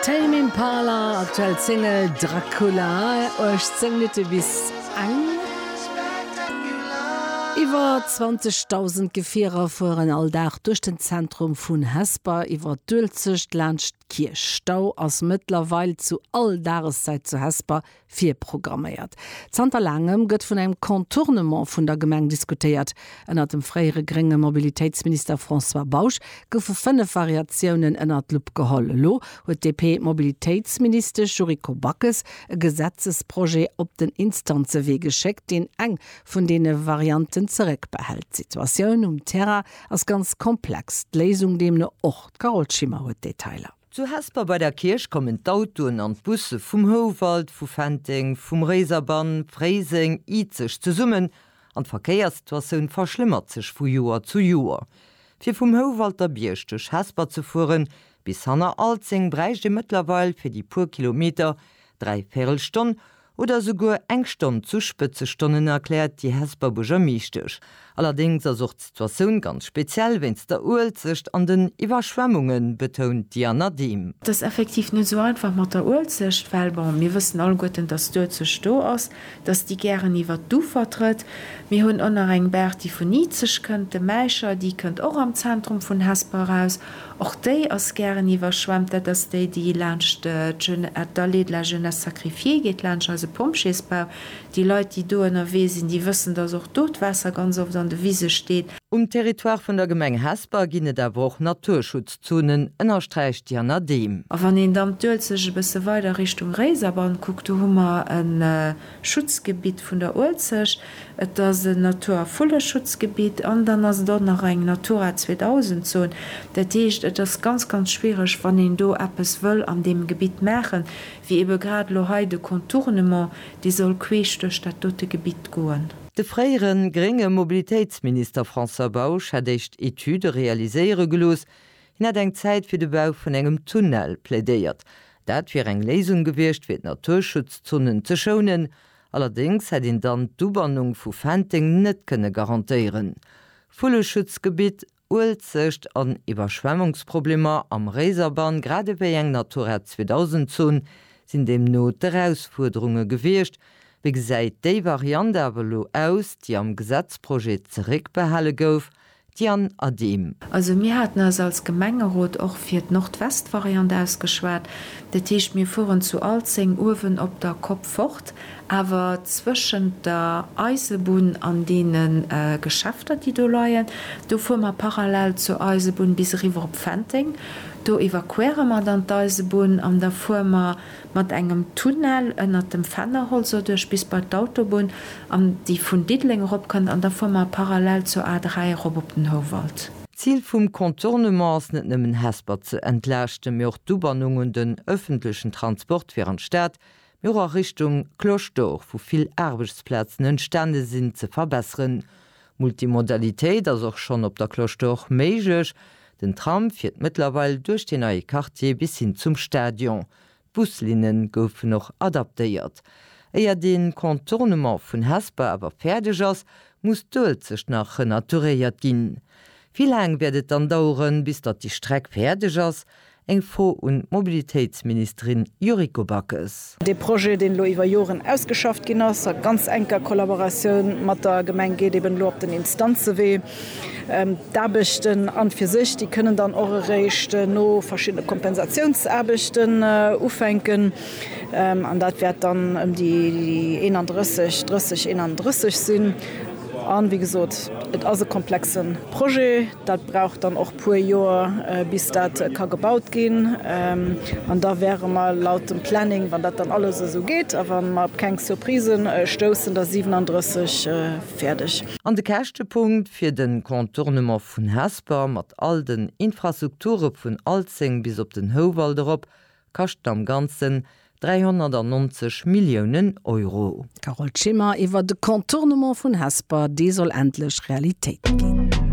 Tame Impala, aktuell d'Single Dracula, 18 Minutte bis eng. Iwwer 20.000 Gefierer fueren all Dag duerch den Zentrum vun Hesper, iwwer d'Uelzecht, laanscht d'Kierch. Stau ass mëttlerweil zu all Dageszäit zu Hesper. Virprogramméiert. Zanter laangem gëtt vun engem Contournement vun der Gemeng diskutéiert. Ënnert dem fréiere grénge Mobilitéitsminister François Bausch goufe fënnef Variatiounen ënnert d'Lupp geholl. Elo huet d'DP-Mobilitéitsministesch Yuriko Backes e Gesetzesprojet op den Instanzewee geschéckt, deen eng vun deene Varianten zeréckbehält. D'Situatioun um Terrain ass ganz komplex, d'Léisung deemno och. D'Carole Schimmer huet d'Detailer. Zu Hesper bei der Kierch kommen d'Autoen an d'Busse vum Houwald, vu Fenteng, vum Réiserbann, Fréiseng, Izeg zesummen an d'Verkéierssituatioun verschlëmmert sech vu Joer zu Joer. Fir vum Houwalter Bierg duerch Hesper ze fueren bis hanner Alzeng bräicht ee mëttlerweil fir déi puer Kilometer dräi Véirelstonn Oder souguer eng Stonn zu Spëtzestonnen, erkläert déi Hesper Buergermeeschtesch. Allerdéngs ass och d'Situatioun ganz speziell wéinst der Uelzecht an den Iwwerschwemmungen, betount d'Diana Dehm. Et ass effektiv net esou einfach mat der Uelzecht, well bon, mir wëssen alleguerten, datt d'Uelzecht do ass, datt déi gären iwwert d'Ufer trëtt. Mir hunn och nach eng Baach, déi vun Izeg kënnt, de Mäischer, déi kënnt och am Zentrum vun Hesper eraus. Och déi ass gären iwwerschwemmt. Dat ass déi, déi laanscht d'Allée de la Jeunesse Sacrifiée geet, laanscht eise Pompjeesbau. Déi Leit, déi do ënnerwee sinn, déi wëssen, dass och do d'Waasser ganz oft an de Wise steet. Um Territoire vun der Gemeng Hesper ginn et awer och Naturschutzzonen, ënnersträicht d'Jana Dehm. A wann een dann d'Uelzecht e bësse weider Richtung Réiserbann kuckt, do hu mer e Schutzgebitt vun der Uelzecht. Et ass en Natur a Vulleschutzgebitt an dann ass et och nach eng Natura 2000 Zon. Dat heescht, et ass ganz, ganz schwiereg, wann een do eppes wëll an deem Gebitt maachen, wéi ebe grad elo hei de Contournement, dee soll queesch duerch dat dote Gebitt goen. De fréiere grénge Mobilitéitsminister François Bausch hätt éischt Etüde realiséiere gelooss. Hien hätt eng Zäit fir de Bau vun engem Tunnel plädéiert. Dat wier eng Léisung gewiescht, fir d'Naturschutzzonen ze schounen Allerdéngs hätt een dann d'Ubannung vu Fenteng net kënne garantéieren. Vulleschutzgebitt, Uelzecht an Iwwerschwemmungsproblemer am Réiserbann grad ewéi eng Natura 2000 Zon sinn deemno d'Erausfuerderunge gewiescht. Wéi gesäit déi Variant awer elo aus, déi am Gesetzprojet zeréckbehale gouf, D'Diane Adehm. Also mir haten eis als Gemengerot och fir d'Nordwestvariant ausgeschwat. Dat heescht, mir fueren zu Alzeng uewen op der Kopp fort, awer zwëschent der Eisebunn an deene Geschäfter, déi do leien, do fuere mer parallel zur Eisebunn bis eriwwer op Fenteng. Do evakuéiere mer dann d'Eisebunn an da fuere mer Mat engem Tunnel ënnert dem Fennerholz doduerch bis bei d'Autobunn, an déi vun Diddeleng erop kënnt, an da fuere mer parallel zur A3 erop op den Houwald. D'Zil vum Contournement ass net nëmmen Hesper ze entlaaschten, mee och d'Ubannung un den ëffentlechen Transport fir an d'Stad, mee och a Richtung Cloche d'Or, wou vill Aarbechtsplazen entstane sinn, ze verbesseren. Multimodalitéit ass och schonn op der Cloche d'Or méiglech. Den Tram fiert mëttlerweil duerch dee neie Quartier bis hin zum Stadion. D'Buslinne goufen och adaptéiert. Éier de Contournement vun Hesper awer fäerdeg ass, muss d'Uelzecht nach renaturéiert ginn. Wéi laang wäert et dann daueren, bis datt déi Streck fäerdeg ass? Eng Fro un d'Mobilitéitsministerin Yuriko Backes. Dee Projet, deen elo iwwer Joren ausgeschafft ginn ass, a ganz enker Kollaboratioun mat der Gemeng, geet eben elo op den Instanzewee. D'Aarbechten an fir sech, déi kënnen dann och eréischt no verschiddene Kompensatiounsaarbechten ufänken. An dat wäert dann ëm déi 31, 30, 31 sinn. A wéi gesot, et ass e komplexe Projet. Dat brauch dann och. puer Joer bis dat ka gebaut ginn an da wäre mer laut dem Planning, wann dat dann alles esou geet a wa mer op keng Surprisen stoussen, da 37 fäerdeg. An de Käschtepunkt fir de Contournement vun Hesper mat all den Infrastrukture vun Alzeng bis op den Houwald erop kaschten am Ganzen 390 Milliounen Euro. Carole Schimmer, Iwwer de Contournement vun Hesper, dee soll endlech Realitéit ginn.